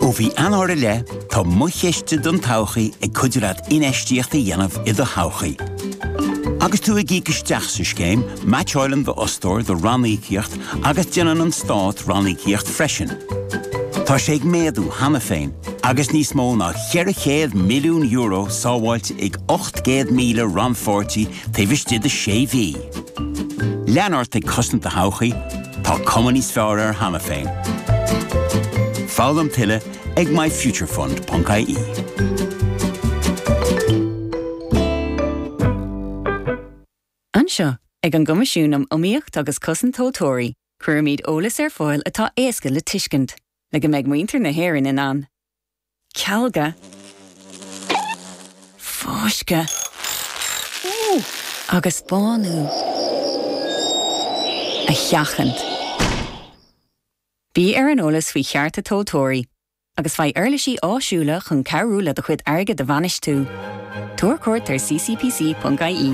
Ó mhí Eanáir i leith, tá Mo Chiste don Todhchaí ag cuidiú leat infheistíocht a dhéanamh i do thodhchaí. Agus tú ag íoc isteach sa scéim, meaitseáileann d'fhostóir do ranníocaíocht agus déanann an Stát ranníocaíocht freisin. Tá sé ag méadú cheana féin agus níos mó ná €400 milliún sábháilte ag 800,000 rannpháirtí taobh istigh de sé mhí. Lean ort ag cosaint do thodhchaí, tá cuma níos fearr air cheana féin. Foghlaim tuilleadh ag myfuturefund.ie. Anseo, ag an gCoimisiún um Iomaíocht agus Cosaint Tomhaltóirí, cuirimid eolas ar fáil atá éasca le tuiscint, le go mbeidh muintir na hÉireann in ann cealga, fáisceadh agus bánú a sheachaint. Bí ar an eolas faoi chearta tomhaltóirí agus faigh uirlisí áisiúla chun cabhrú le do chuid airgid a bhainistiú. Tabhair cuairt ar ccpc.ie.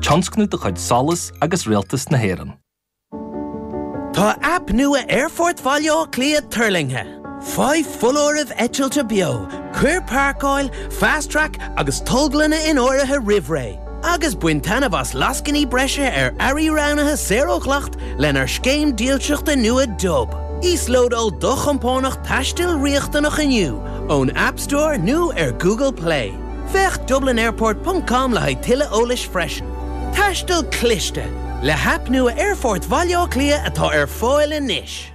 Tionscnamh de chuid SOLAS agus Rialtas na hÉireann. Tá aip nua Aerfort Bhaile Átha Cliath tuirlingthe! Faigh foláirimh eitilte beo, cuir Páirceáil, Fast Track agus Tolglanna in áirithe roimh ré, agus bain taitneamh as lascainí breise ar earraí roghnaithe saor ó dhleacht lenár scéim dílseachta nua Dub. Íoslódáil do chompánach taistil riachtanach inniu ón App Store nó ar Google Play. Féach dublinairport.com le haghaidh tuilleadh eolais freisin. Taisteal cliste! Le haip nua Aerfort Bhaile Átha Cliath atá ar fáil anois.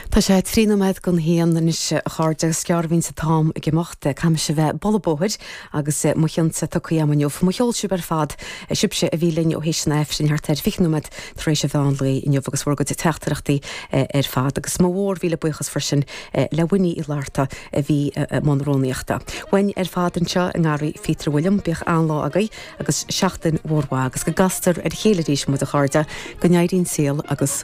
Tá sé trí nóiméad go haon anois, a chairde, agus is gearr a bhíonns an t-am ag imeacht. Caithfimis a bheith ag bualadh bóthair agus mo chion tugtha agam inniu. Mo cheol sibh ar fad sibhse a bhí linn ó thar éis an aifrinn thart ar fiche nóiméad tar éis an mheán lae inniu agus bhur gcuid teachtaireachtaí ar fad. Agus mo mhór mhíle buíochas freisin le Winnie Uí Fhlatharta a bhí i mbun rúnaíochta. Uainn ar fad anseo i ngarraí Pheter William, bíodh an-lá agaibh agus seachtain mhór mhaith agus go gcastar ar a chéile arís muid a chairde, go n-éirí an saol agus.